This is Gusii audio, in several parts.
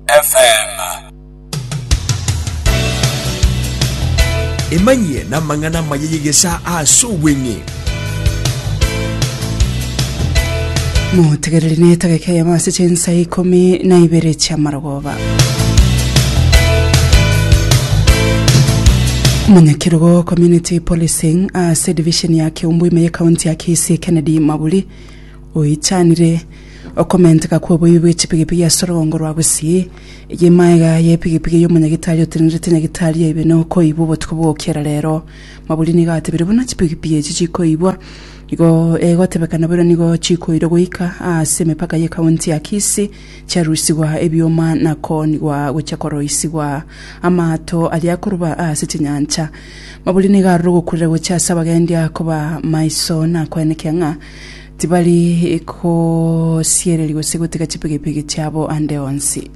FM. Emanyie namang'ana amaya y'egesaa ase obweng'e. motegereri na etageka eyemo ase chinsa ikomi na ibere chi'amarogoba munyakirogo community policing ase division ya keumbu ime y'ekaunti ya kisii kennedy maburi oichanire Okomenteka kw'oboibi bwe chipigipigi ase orogongo rwa Gusii, eye maega y'epigipigi y'omonyagitari otenerete nyagitari yaibe na okoibwa obotuko bw'ogokiera rero. Maburi nigo atebirie buna chipigipigi echi chikoibwa igo egotebekana boigo nigo chikoirwa goika aase emepaka ye county ya Kisii chiarusigwa ebioma na koonigwa gochia koroisigwa amaato aria akoruba aase chinyancha. Maburi nigo aroro ogokurera gochia ase abagendia koba maiso na koenekea ng'a Tibari kosiereria gose gotiga chipigipigi chiabo ande onsi.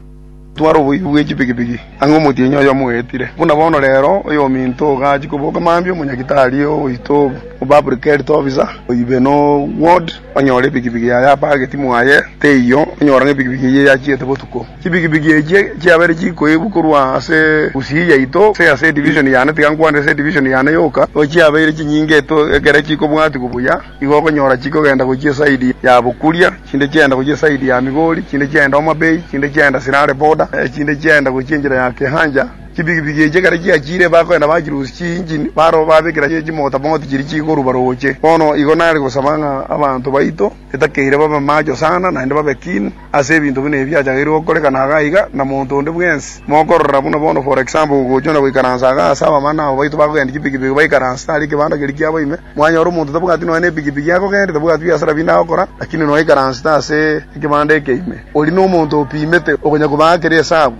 Twara oboibi bwe chipigipigi ang'e omotienyi oyomo oetire. Buna bono rero, oyominto ogachia koboka mambia omonyagitari oito obe public health officer, oibe no ward onyore epigipigi yaye apageti mwaye teiyo onyora ng'a epigipigi eye yachiete botuko. Chipigipigi echio chiabere chikoibwa korwa ase Gusii yaito gose ase edivision yane, tiga nkwanire ase edivision yane yoka, nigo chiabeire chinyinge ekero chikobwatigwa buya. Nigo okonyora chikogenda gochia esaidi ya bokuria, chinde chiagenda gochia esaidi ya Migori, chinde chiagenda Homa Bay, chinde chiagenda Sirare Border, na echinde chiagenda gochia enchera ya Kehancha. Chipigipigi echi ekero chiachiire, bakoenda bachirusia chiinjini, barabwo babekera chimotamoti chiria chigoruba rooche. Bono igo nare gosaba ng'a abanto baito etakeire babe macho sana, naende babe keen ase ebinto buna ebi biachagaire gokoreka na iga iga, na monto onde bwensi. Mokorora buna bono, for example, gogochia na goikaransa iga ase abamama na ababaito bakogenda chipigipigi baikaranse tari ekebanda keria kiabo ime, Mwanyora omonto tabwati nonya nepigipigi akogenda, tabwati biasara binde agokora, lakini nonya aikaransete ase ekebanda ekeime, oria nomonto opimete, okonya koba akere esabu.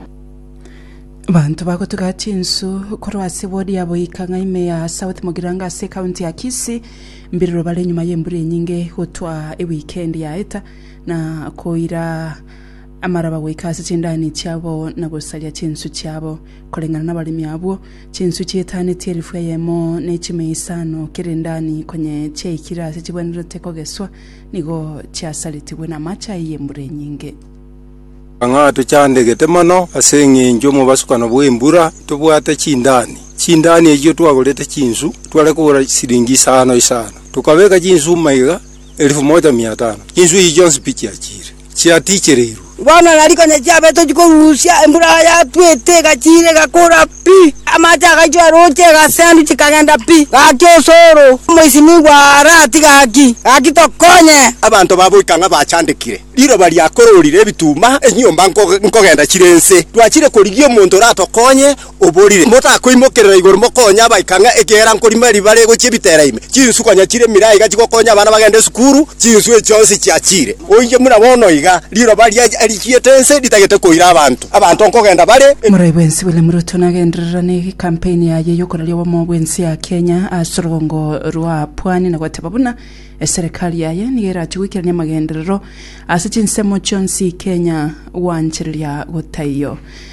Abanto bagotiga chinsu korwa ase ward ya Boikang'a ime ya South Mogiranga ase ekaunti ya Kisii mbiriro bare nyuma y'embura enyinge gotwa ewikendi yaeta na koira amaraba goika ase chindani chiabo na gosaria chinsu chiabo. Koreng'ana nabaremi abwo, chinswe chietanetie elifu eyemo ne chimia isano kera endani konye chiaikire aase chibwenerete kogeswa, nigo chiasaretigwe namache ayio y'embura enyinge. Ng'a tochandegete mono ase engencho y'omobasukano bw'embura, tobwate chindani. Chindani echio twagorete chinsu, tware kogora siringi isano isano, tokabeka chinsu maiga elifu moja mia tano. Chinsu echi chionsi pi chiachire? chiatichereirwe. Bono na rikonya chiabe tochi korusia, embura yatwete egachiira egakora pi, amache agaichwa eroche egasendu chikagenda pi, gaki osoro omoisinigwa ara ati gaki, gaki tokonye. Abanto baboika ng'a bachandekire, riroba riakororire ebituma, enyomba nkogenda chire nse, twachire korigia omonto oratokonye, oborire, motakoimokerera igoro mokonye abaika ng'a ekiagera nkorima riba rigochia ebitera ime, chinsu konya chire emiraa iga chigokonya abana bagende esukuru, chinsu echi chionsi chiachire. Oinche buna bono iga riroba riachiete ense ritagete koira abanto, abanto nkogenda bare. Moraia bwensi William Ruto nagendererane gekampeni yaye yokoraria obomo bwensi ya Kenya ase orogongo rwa Pwani na goteba buna eserekari yaye nigo erachie goikerania amagenderero ase chinsemo chionsi Kenya gwanchereria gotaiyo.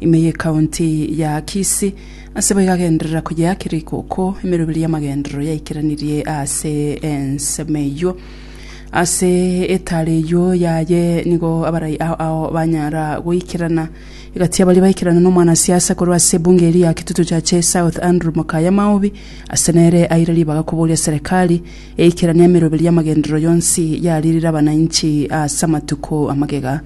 Ime y'ekaunti ya Kisii ase bo igagenderera koyeakera ikoko emeroberi y'amagenderero yaikeranirie ase ensemo eyio. Ase etaare eyio yaye nigo abarai ao ao banyara goikerana. Egati abaria baikerana n'omwanasiasa korwa ase ebunge eria ya Kitutu Chache South Andrew Mokaya Maobi ase nere aire ribaga koboria serekari eikeranie emeroberi y'amagenderero yonsi yaririre abanainchi ase amatuko amagega.